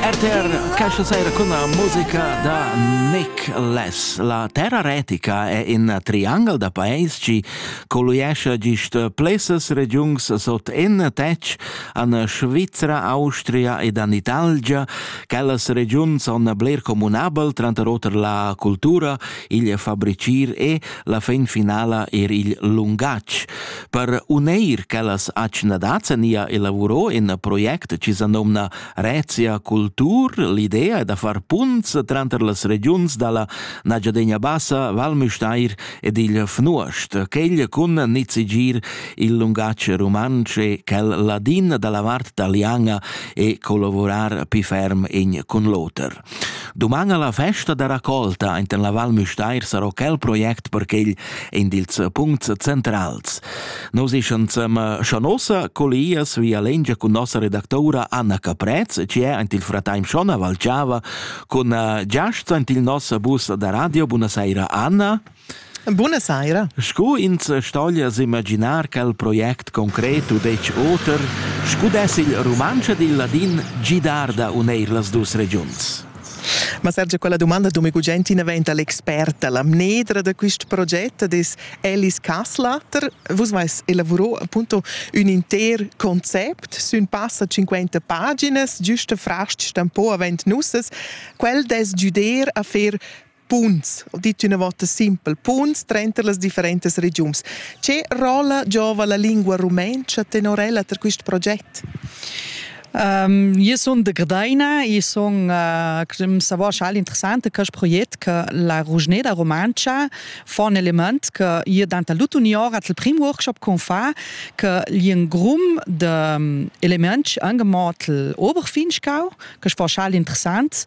RTR questa sera con la musica da Nick Les. La terra retica è in triangel da paesi che colliesce gist places regiuns sot in tec an Svizzera, Austria ed an Italgia. Quellas regiuns son bler comunabel, tranter oter la cultura, il fabricir e la fin finala er il lungatg. Per uneir quellas atschnadads nia elavuro in project chi sa nomna Rezia Cultur. L'idea è da far punts tranter las regiuns dalla Nagiadegna Bassa, Val Müstair ed il Fnuost, quegl cun nizigir il lungatg rumantsch e quel ladin dalla vart taliana e collavurar pi ferm in cun l'oter. Duman a la festa da raccolta in la Val Müstair sarò quel project per quel in dils puncts centrals. Nos ischan sem Schanossa colias via lengia cun nossa redactora Anna Caprez, ci è ant il frateim Schona Valciava, cun giast ant il nossa bus da radio. Buonasera Anna. Buna saira. Sco ins stoglia s'imaginar quel project concret u detg oter, sco dess il rumantsch ed il ladin gidar da uneir las dus regiuns? Ma Sergio, quella domanda do mi gugent inaventa l'experta. La mnedra da quist proget es Alice Kasslatter. Vus vais elavurò appunto ün inter concept sün passa 50 paginas, giusta frasch stampò avent nusses. Quel dess güder a fer Punts, ho dit üna vota simpel, punts tranter las differentas regiuns. Che rolla giova la lingua rumentscha tenor ella per quist proget? Um, io sun de Gdaina, io sun uh, savoir chal interessante quest proget che la Rugneda Romantscha fa un element che io danta l'utunior al prim workshop con fa che gli grum de um, elements angemot l'Oberfinchgau, che fa chal interessant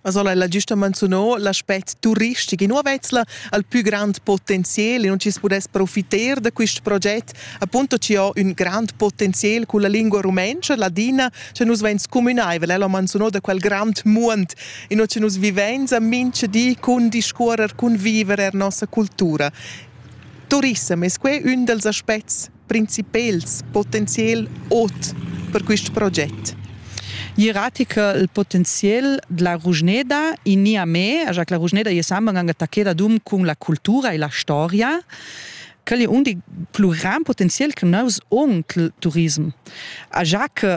Asola ella giusta manzunò l'aspect turistic in Uovetzla al più grand potenzial e non ci pudess profiter da quist proget appunto ci ho ün grand potenzial culla lingua rumentscha ladina che nus vain scumünaivel ella manzunò da quel grand muond in che nus vivenza mincha di cun discuorrer cun viver er nossa cultura. Turissem es que ün dals aspets principels potenzial ot per quist proget. Ierratica il potenzial della Rugneda in nia me, a Jacques la Rugneda je samba anche attaccheda dum con la cultura e la storia quel è un dei pluriram potenzial che nous on il turism. A Jacques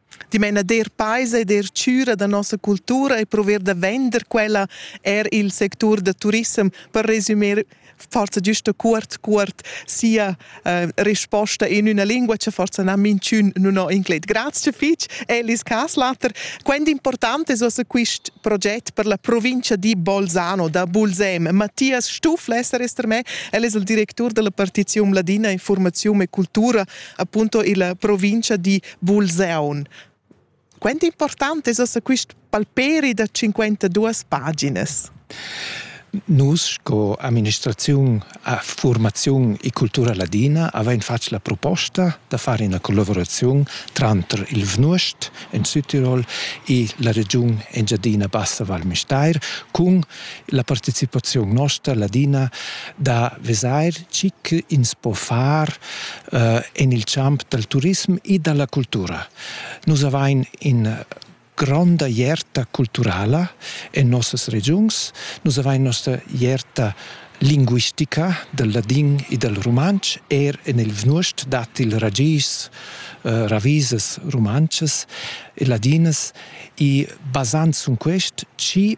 Ti meina der peisa e der chüra da nossa cultura e prover da vender quella er il sectur da turissem per resumir forza giusta cuort cuort sia uh, risposta in una lingua che forza na minchun non ho incleit grazie fitch Elis Kaslater quando importante so se quist proget per la provincia di Bolzano da Bulsem Matthias Stuflesser ist er me el es il directur della partizium ladina informazione e cultura appunto illa provincia di Bulseun. Quant important es ossa quist palperi da 52 paginas? Nus sco amministraziun a formaziun e cultura ladina avain fatg la proposta da far ina collaboraziun tranter il Vnuost en Südtirol e la regiun Engiadina Bassa Val Müstair cun La participaziun nosta ladina da vesair chi ins po far uh, en il champ dal turism e da la cultura. Nus avain in gronda ierta culturala en nossas regiuns. Nus avain nossa ierta linguistica del ladin e del rumantsch, er en il Vnuost dat il ragis, eh, ravisas rumantschas e ladinas e basant sun quest, ci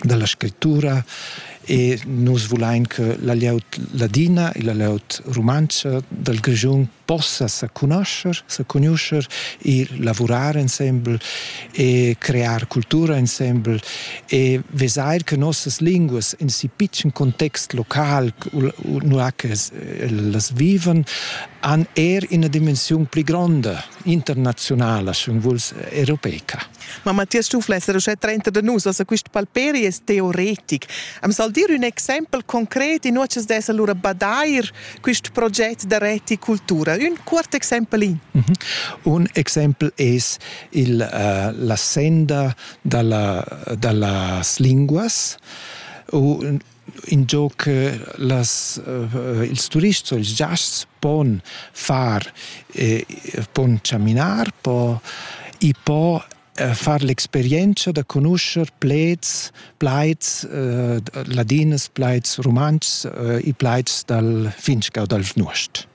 dalla scrittura e nus vulain che la glieud ladina e la glieud rumantscha dal Grischun possa sa conoscer, sa conoscer e lavurar insembel e crear cultura insembel e vesair che nossas linguas in si pitschen context local, nua che las vivan, han er ina dimensiun pli gronda internazionala, sche vuls, europeica. Ma Mattias Stufler è uschè trenta da nus, ossa quist palperi es teoretic. Am sal dir ün exaimpel concret, inua cha's dess alura badair quist proget da reticultura. Ün cuort exaimpel in. Mhm. Un exaimpel es il, uh, la senda da la, da las linguas u ingio che las, uh, ils turists o ils giasts pon far, eh, pon chaminar, po, i po eh, far l'experienza da conoscere plaids, plaids eh, ladinas, plaids rumantschs, eh, i plaids dal Finchgau dal Vnuost.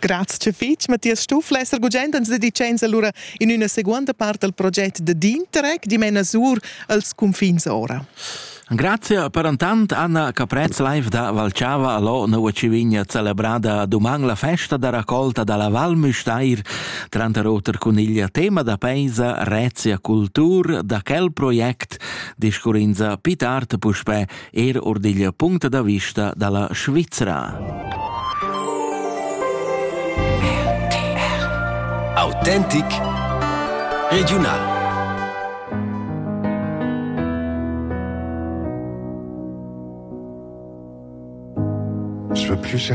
Grazia fitg, Mathias Stuffler, esser gugent ans dedicains allura in üna seguonda part dal proget da Dinterec, dimena sur als cunfins ora. Grazie per intant Anna Caprez live da Valchava allo Nova Civigna celebrada doman la festa da raccolta dalla Val Müstair tranter oter cun il tema da peisa Rezia Cultur da quel project discurrinza Pitart puspè er or digl punct da vista dalla Svizra. Autentic Regional Je veux plus chercher